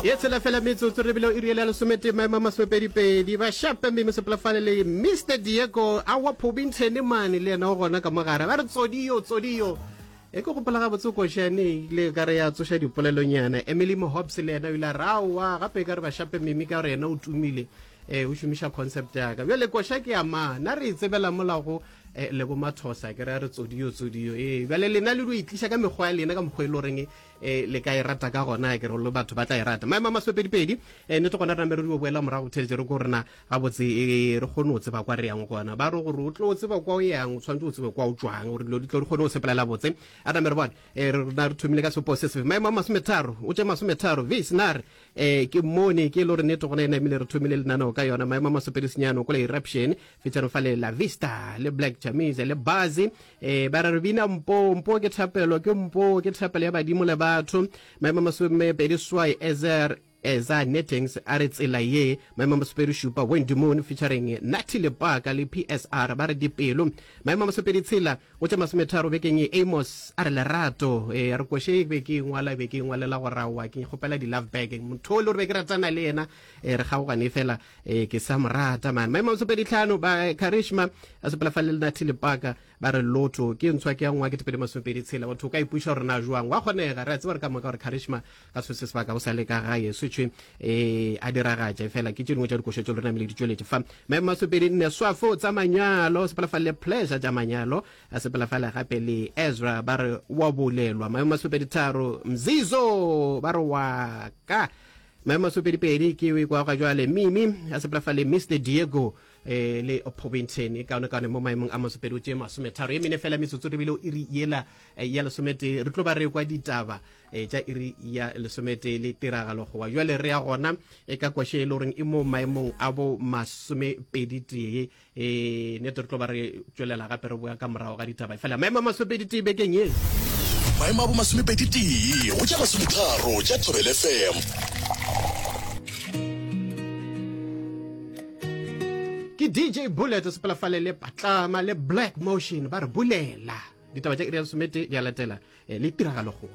ye tshela fela metsotso re bile o iri ele ya lesometee maemo a masomepedipedi bashape mme mosepolafale le mr diego a wa phobintshene mane le yena o gona ka mogare ba re tsodiyo tsodiyo e ke gopola ga botse košane ile ka re ya tsoša dipolelonyana emily mohobs le yena o ile a raowa gape e ka re bashape mimi ka gore yena o tumile e o šomiša concept yaka bjale koša ke ya ma na re e tsebela molago eh, le bomathosa ke re a re tsodiyo tsodiyo ee bjale lena le dio e tliša ka mekgwa ya lena ka mokgwa e le goreng e le ka e rata ka gona ke re le batho ba tla e rata maemo a masopedipedi e nete gona re namere di boela morago theletše re ko rena gabotse e re kgone o tseba kwa re yang gona ba re gore o tlo o tseba kwa o yang o tshwanetse o tsebe kwa o tswang gore dilo di tlo di kgone o sepelela botse a namere bone e rena re thomile ka sepo se sefe maemo a masometharo o tše masometharo vis na re um ke mone ke e le gore nete gona e namile re thomile lenaneo ka yona maemo a masopedi senyano ko le eruption fetšano fa le la vista le black chamise le bazi E, ba re re bina mpo mpo ke thapelo ke mpo ke thapelo ya badimo le batho maemo masome pedi swai ezer eza nettings a re tsela ye maemo masopedi šupa wendy moon featuring natty lepaka le psr ba re dipelo maemo masopedi tshela go tša masometharo bekeng ye amos a re lerato e re koše be ke ngwala be ke ngwalela go rawa ke kgopela di-love bag motho o le gore be ke ratana le yena e re kgaogane fela ee ke sa morata man maemo sepedi tlhano ba karishma a sepela fa le lena thilepaka ba re lotho ke ntshwa ke ya ngwa ke tepedi masomepedi tshela batho ka ipuša gore na jwang wa kgonega re a tseba re ka moka gore karishma ka se se sebaka o sa le ka gae setshe e a diragatša fela ke tše dingwe tša dikošo tse lona mele di tšweletše fa maemo masomepedi nne swafo tsa manyalo sepela fa le pleasure tša manyalo a sepela fa le gape le ezra ba re wa bolelwa maemo masomepedi tharo mzizo ba re wa ka Maemo a sopedipedi ke o ikwaga jwale Mimi a sepela fa le Mr Diego e le Pobinten e kaonekaone mo maemong a masopedi o tšee masometharo e mene fela metsotso rebile o iri yela eh, ya lesometee re tlo ba re kwa ditaba eh, tša iri ya lesometee le tiragalo goba jwale re ya gona e ka kwashe e le goreng e mo maemong a bo masomepedi tee e nete re tlo ba re tswelela gape re boya ka morago ga ditaba fela maemo a masopedi tee bekeng ye maemo a bomasomepedi tee go ja masometharo ja thobel fm ke dj bullet sepela fale le patlama le black motion ba re bulela ditaba tša iri ya somete di a latela eh, le tiragalo goa